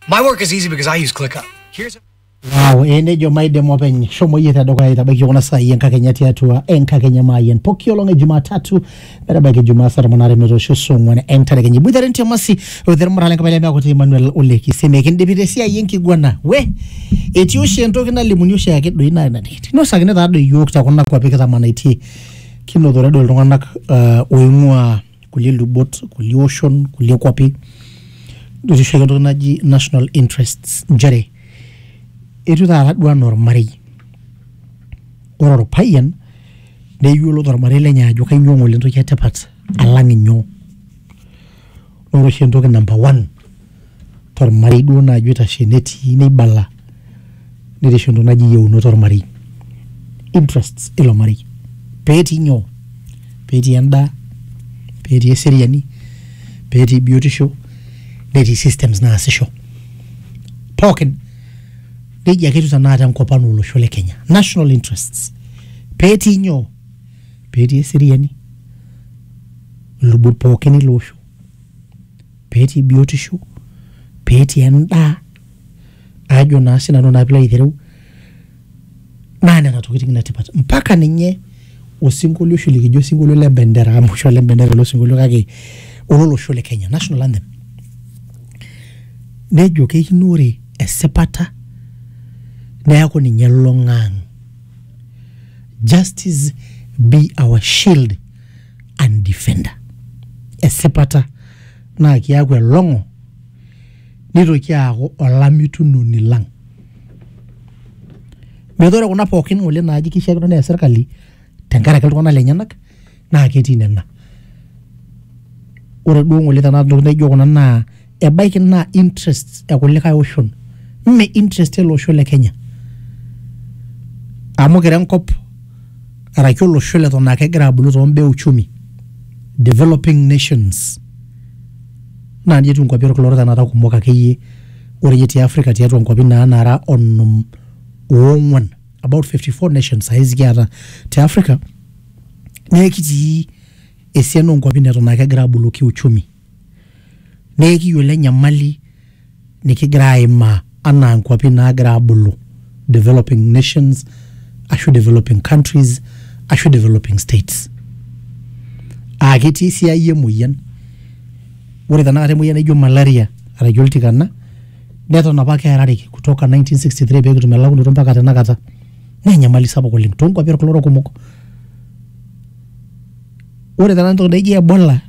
My work is easy because I use ClickUp. Here's Wow, eh, nejo maidem openy shomo yie tedukuya aitabaiki kuna saai enkakenya tiatua enkakenya maayian poki olong e jumatatu metabaiki jumaa saa tomon aare metoosho saa ong'uan enterekenya iboitare ntiamasi oithermurale enkabila emeakuti emmanuel olekisi mikindipi tesiai enkiguana we etii oshi entoki nalimuni oshi ake doi naa ina tikiti inosakini taa doi iyiook tekuna kuapi kitamanaitie kinotore doi iltung'anak uh, oing'ua kulie lubot kulie oshon kulie kuapi etishu ake entoki naji national interests nchere etiu taata duo anaa ormarei ore orpayian neyiolo tormarei lenye ajo kainyio ng'ole entoki etipat alang inyoo ore oshi entoki number one. tormarei duo naaji oitashe netii neibala netii oshi entoki naji yieunot ormarei interests ilo marei petii nyoo petii endaa petii eseriani petii biotisho netii systems naasisho pookin nejia ake etiu tenakata enkop ang olosho le kenya national interests petii nyoo petii eseriani ilubot pookin ele osho. pee etii biotisho, pee etii endaa ajo naa sii nanu naa pilo aitereu naa nena tokiting ine tipat. Mpaka ninye osinkolio oshi likijo osinkolio le bendera amu oshi ole bendera ele osinkolio kake ololosho le Kenya, national anthem. Nejo keikino ore esipata neeku ninye elulung'a ang'. Justice be our shield and defender esipata naa kiaku elong'o nitoki aaku olamitunoni lang metaa ore kuna pookin ng'ole naaji kishiakino neya serkali tenkaraki iltung'anak lenyenak naa ketii nena ore duo ng'ole tenakata ntokitin naijo kuna naa ebaiki naa interests e kulikae oshon mme interest ele osho le kenya amu kira enkop araki olosho leton aa kegira abulu tombaa e uchumi developing nations naa nji etiu inkuapi orkila orok tenakata kumok akeyie ore iyie te africa tiatua inkuapi naa nara onom ong'uan about fifty four nations saizi kiata te africa neekitii esiana onkuapi neton aa kegira abulu kiuchumi. naa ekiyiolo enyamali nikigira aimaa anaa nkuapi naagira abulu, developing nations ashu developing countries ashu developing states. Aa ketii esiai emoyian, ore tenakata emoyian naijo malaria arashu oltikana neton apake earare kutoka nineteen sixty three pee kitum elakunoto mpaka tenakata naa enyamali sapuk oleng too nkuapi olkila orok kumok. Ore tenakata entoki naijo ebola.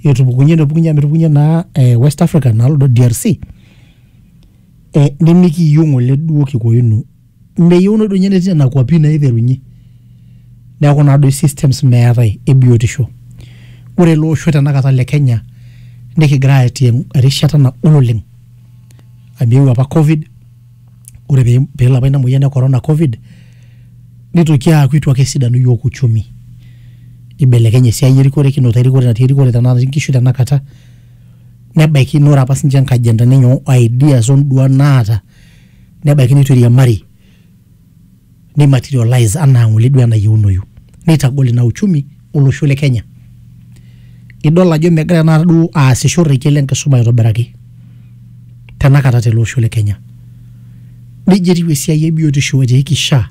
etupukunye nepukunye amu etupukunye naa eh, west africa nalodo drc eh, nimikiyieu ng'ole duo kikoinu meyieuno duo ninye netii nena kuapi naiterunye neeku naa doi systems meetae e biotisho ore ele osho tenakata le kenya nikigira atii erishata nagol oleng amu eewuo apa covid ore pee pee elo apa ina moyian e corona covid, nitoki aaku itu ake esidanu iyiok uchumi. Ibelekenye esiai erikore kinoto erikore natii erikore tenaa natii nkishu tenakata, nebaiki naa ore apa siinche nkajentani enye o ideas o nduat naata nebaiki nitu iriamari. neimaterialize anaa ng'ole duo enayieunoyu neitagol ina uchumi olosho le Kenya. Idol ajo megira tenakata duo aasisho rrekie le nkisuma aitobiraki tenakata tele osho le Kenya. Neija etiu esiai e biotisho etiiki SHA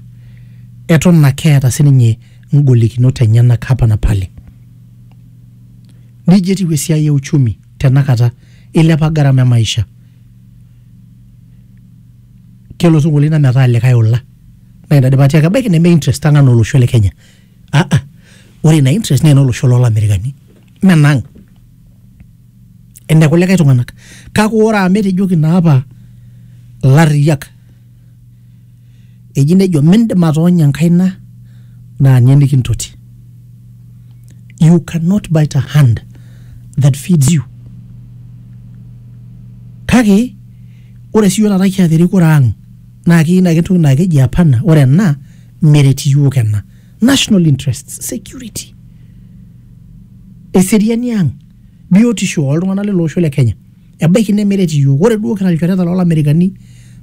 eton ake eeta sininye ngolikinot enyenak hapa na pale. Neija etiu esiai e uchumi tenakata eilepa gharama e maisha. kelo sukuulini na metaa likae ola na ina pati ake ebaki neme interest ang ana olosho le kenya aa ore ina interest na enolosho lolamerikani me enang ene kulikae tunganak kake ore amu etejoki na apa ilariak eji nejo mindim atoonya enkaina na nye nikintoti you cannot bite a hand that feeds you kake Ore sii iyiook taata kiata erikore ang naa keyieu naaji entoki naa keji apana ore ena meret iyiook ena. National interests, security, eseriani ang, biotisho oo ltung'anak lele osho le Kenya. Ebaiki nemeret iyiook. Ore duo kira ilchoreta loo lamerikani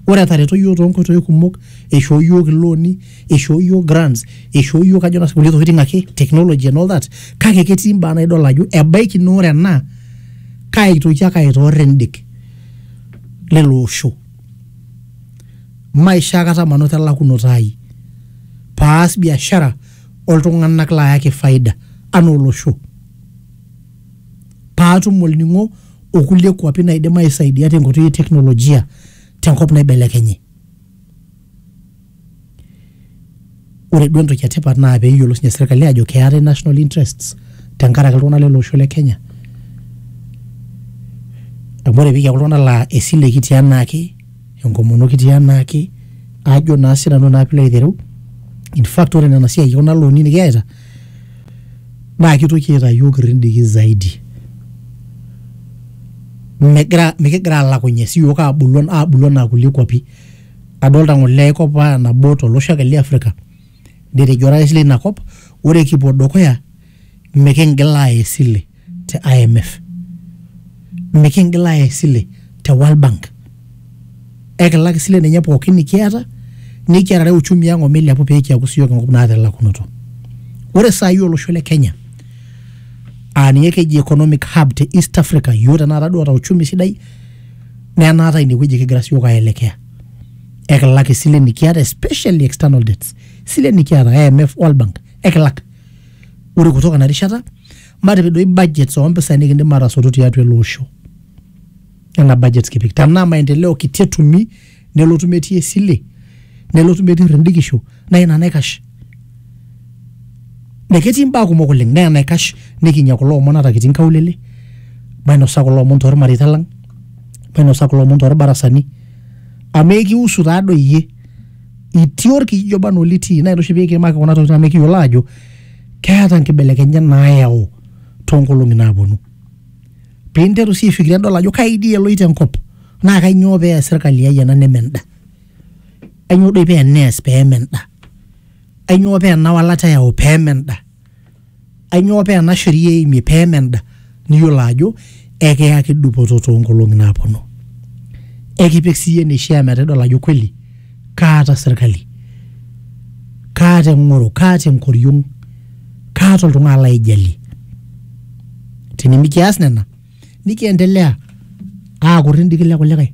ore etareto iyiook too nkoitoi kumok, eishoo iyiook ilooni, eishoo iyiook grants, eishoo iyiook ajo naa sinanu kulie tokitin ake, technology and all that kake ketii imbaa naa idol ajo ebaiki naa ore ena kaitoki ake aitoor endik. lelo osho maisho akata manoto elakunoto ai paas biashara oltung'anak laayaki faida anaa olosho paatum olning'o okulie kuapi naidim aisaidia tenkoitoi e teknolojia tenkop naibelekenye. Ore duo entoki etipat naa pee eyiolou sinye serkali ajo keetae national interests tenkaraki iltung'anak lele osho le Kenya. Amu ore pikiaku iltung'anak laa esile kitii enaake, enkomono kitii enaake ajo naa sinanu naa piilo aitereu. In fact ore nena siai e kuna looni nekiyaita naa kitoki aitaa iyiok irridiki zaidi. Megira mikigira alakunye sii iyiok abulu abulu enaa kulie kuapi. Adolta ng'ole ai kop aa nabo to losho ake le Afrika, netejo orais leina kop ore kipuo dukuya miking'il aaya esile te IMF, miking'il aaya esile te World Bank, ekilak isilen enye pookin nekiata nekiarare uchumi ang' o milepu pee kiaku siyiok enkop naata elakunoto. Ore saa hii olosho le Kenya aa ninye ekeji economic hub te East Africa, iyiok tenakata duo oota uchumi sidai. naa enaata inewueji kigira siyiok aelekea ekilak isilen nikiata especially external debts isilen nikiata IMF World Bank ekilak ore kutoka ina rishata matipik doi budgets ompisai nikindim atasotu tiatua ele osho nena budgets kipik tenaa maendeleo kiti etumi nelotu metii esile nelotu metii rendikisho naa ina naikash Naa ketii imbaa kumok oleng naa enaikash nikinyia kulo omon ata kitii inkaulele mainosa kulo omon tormareita lang mainosa kulo omon torbarasani amu ekiusu taa doi iyie itii orkijiji oba anaa olitii naa ina oshi pikiimaki kuna tokitin amu ekiyiolo aajo keeta inkibelekenyat nayau tonkolong'i naponu pinteru sii aifikiria idol ajo kai dii eloito enkop naa kainyio pees sirkali ai ena neme enda. Ainyoo doi paa eneas pee eme enda? Ainyoo paa ena walata eyau pee eme enda? Ainyoo paa ena sheria eimie pee eme enda? Niyiolo ajo ekiyaki dupoto too nkolong'i naaponu. Ekipik siyie eneishaa metaa idol ajo kweli kaata serkali, kaata eng'oro, kaata enkoriong, kaata oltung'ani laijalie. Tinimikias nena nikiendelea aakut indikile kulikae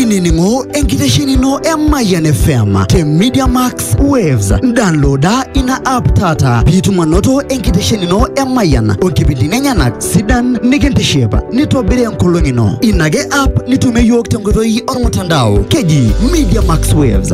inining'o enkitesheni ino e Mayian FM te Media Max Waves. Downloada ina app taata piitum anoto enkitesheni ino e Mayian onkipindini enyenak sidan nikintiship nitobiri enkolong ino. Ina ake app nitumie iyiook tenkoitoi ormutandao keji Media Max Waves.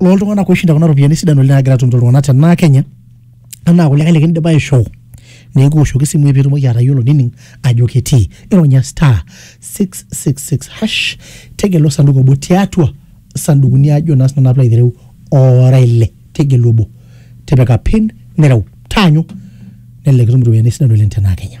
loltung'anak oishinda kuna ropiyiani sidan oleng nagira atumito iltung'anak tenaa Kenya anaa kulikae likindipa aishoo nikiwoshoki isimui pitumoki atayiolo nining ajo ketii ironya star 666 hash tegelu osanduku obo tiatua sandukuni ajo naa sinanu apilo aitereu ora ile tegelu obo tipika pin nireu taanyu nelelek itum iropiyiani sidan oleng tenaa Kenya